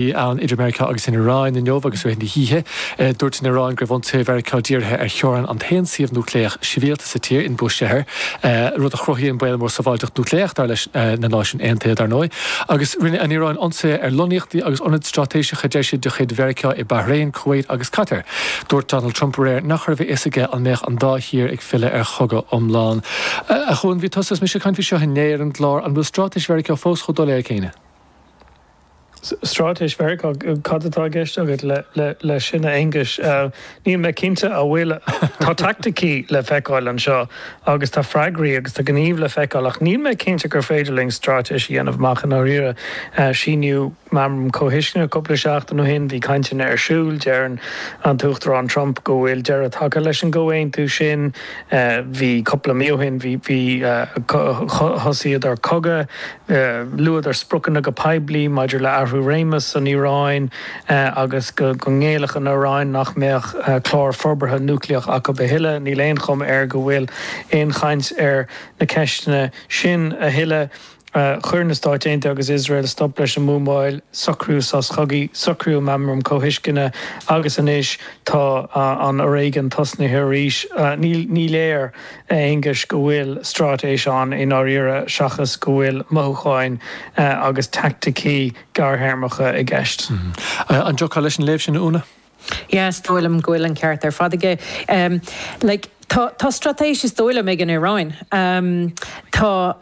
bhí ann idir Meiriceá agus an Iaráin inniu agus rith na hoíche. Dúirt an Iaráin go raibh ionsaithe Mheiriceá dírithe ar theorainn an aon suíomh núicléach sibhialta sa tír, in Bushehr, rud a chruthaíonn baol mór sábháilteacht núicléach, dar leis na Náisiúin Aontaithe, dar ndóigh. Agus rinne an Iaráin ionsaithe ar lonnaíochtaí agus ionaid straitéiseacha, deir siad, de chuid Mheiriceá i Bahrain, Kuwait agus Catar. Dúirt Donald Trump aréir nach raibh a fhios aige an mbeadh an dá thír ag filleadh ar chogadh iomlán. A Chuáin, bhí tusa is mise ag caint faoi seo inné ar an gclár, an bhfuil straitéis Mheiriceá fós chomh doiléir céanna? Straitéis Mheiriceá, cad atá i gceist agat leis sin a Aonghuis? Níl mé cinnte an bhfuil, tá taicticí le feiceáil anseo agus tá freagraí agus tá gníomh le feiceáil ach níl mé cinnte gur féidir linn straitéis a dhéanamh amach i ndáiríre. Síníodh Meamram Comhthuisceana cúpla seachtain ó shin, bhí cainteanna ar siúl, deireann an tUachtarán Trump go bhfuil deireadh tagtha leis an gcomhaontú sin, bhí cúpla mí ó shin, bhí, thosaíodar cogadh. Luadar spriocanna go poiblí maidir le athrú réimeas san Iaráin agus go ngéillfeadh an Iaráin nach mbeadh clár forbartha núicléach acu a thuilleadh. Níl aon chuma air go bhfuil aon chaint ar na ceisteanna sin a thuilleadh. Chuir na Stáit Aontaithe agus Iosrael stop leis an mbuamáil, socraíodh sos cogaidh, socraíodh meamram comhthuisceana agus anois tá an fhoréigean tosnaithe arís. Ní léir. A Aonghuis, go bhfuil straitéis ann i ndáiríre seachas go bhfuil mothúcháin agus teaicticí gearrthéarmacha i gceist. An dtiocfá leis an léamh sin, a Úna? Is dóigh liom go bhfuil an ceart ar fad aige. Like, tá, tá straitéis is dóigh liom ag an Iaráin. Tá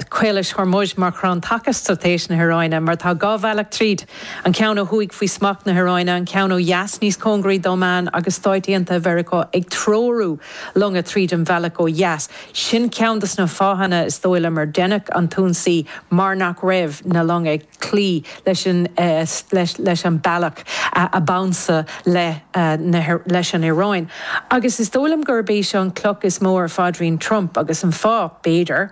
Caolais Hormuz mar chrann taca straitéis na hIaráine mar tá dhá bhealach tríd, an ceann ó thuaidh faoi smacht na hIaráine, an ceann ó dheas níos cóngaraí d'Óman agus Stáit Aontaithe Mheiriceá ag treorú. longa tríd an bhealach ó dheas. Sin ceann de sna fáthanna, is dóigh liom, ar deineadh an t-ionsaí mar nach raibh na longa ag cloí leis an bealach ab ansa leis an Iaráin. Agus is dóigh liom gurb é seo an cloch is mó ar phaidrín Trump agus an fáth, b'fhéidir,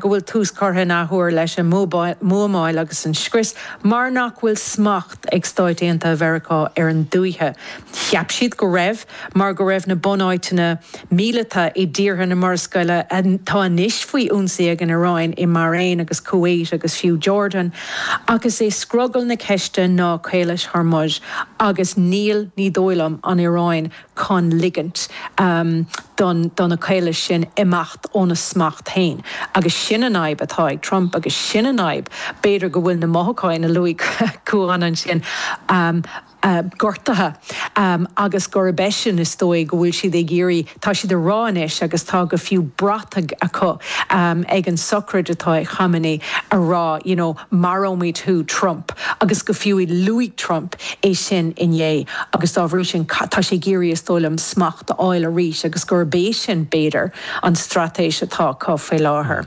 go bhfuil tús curtha in athuair leis an mbuamáil agus an scrios mar nach bhfuil smacht ag Stáit Aontaithe Mheiriceá ar an dúiche. Cheap siad go raibh. mar go raibh na bunáiteanna míleata i dtíortha na Murascaille atá anois faoi ionsaí ag an Iaráin, i mBairéin agus Kuwait agus fiú Jordan, agus is é scrogall na ceiste ná Caolas Hormuz agus níl, ní dóigh liom, an Iaráin chun ligint do na caolais sin imeacht óna smacht féin. Agus sin an fhadhb atá ag Trump agus sin an fhadhb, b'fhéidir go bhfuil na mothúcháin a luaigh Cuán ansin, gortaithe agus gurb é sin is dóigh go bhfuil siad ag iarraidh, tá siad a rá anois agus tá go fiú brataigh acu ag an sochraid atá ag Khamenei a rá you know maróimid thú Trump agus go fiú i luaigh Trump é sin inné agus dá bhrí sin tá sé ag iarraidh is dóigh liom smacht a fháil arís agus gurb é sin b'fhéidir an straitéis atá acu faoi láthair.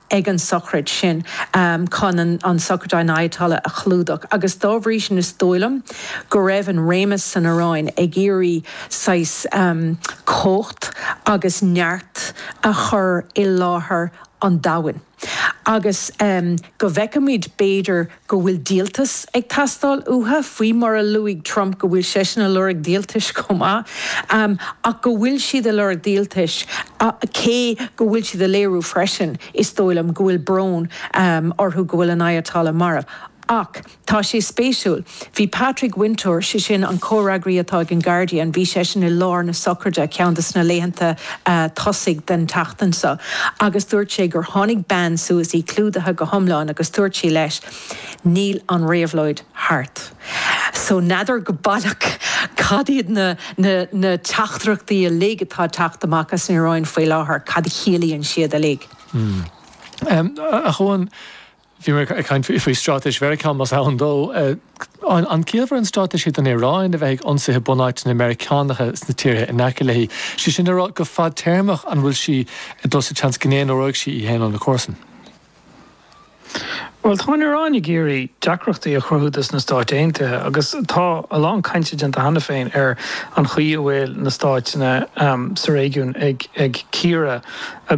ag an sochraid sin chun an sochraid an Ayatollah a chlúdach agus dá bhrí sin is dóigh liom go raibh an réimeas san Iaráin ag iarraidh saghas cumhacht agus neart a chur i láthair an domhain agus go bhfeicfimis b'fhéidir go bhfuil díoltas ag teastáil uatha, faoi mar a luaigh Trump go bhfuil seisean a lorg díoltais chomh maith, ach go bhfuil siad a lorg díoltais, cé go bhfuil siad a léiriú freisin, is dóigh liom, go bhfuil brón orthu go bhfuil an Ayatollah marbh. Ach tá sé spéisiúil, bhí Patrick Wintour, sé sin an comhfhreagraí atá ag an Guardian, bhí seisean i lár na sochraide ceann de sna laethanta tosaigh den tseachtain seo agus dúirt sé gur tháinig bean suas, í clúdaithe go hiomlán, agus dúirt sí leis, Níl an réabhlóid thart. So n'fheadar go baileach cad iad na na teachtaireachtaí uilig atá ag teacht amach as an Iaráin faoi láthair, cad a chiallaíonn siad uilig. Ach Eoghan, Bhí mé ag caint faoi straitéis Mheiriceá, más ann dó. An ciallmhar an straitéis é don Iaráin a bheith ag ionsaí bunáiteanna Meiriceánacha sna tíortha in aice léi? Sé sin le rá, go fadtéarmach an bhfuil sí ag dul sa tseans go n-aonróidh sí í féin óna comharsain? Bhuel, tá an Iaráin ag iarraidh deacrachtaí a chruthú dos na Stáit Aontaithe agus tá a lán cainte déanta cheana féin ar an chaoi a bhfuil na stáiteanna sa réigiún ag cíoradh a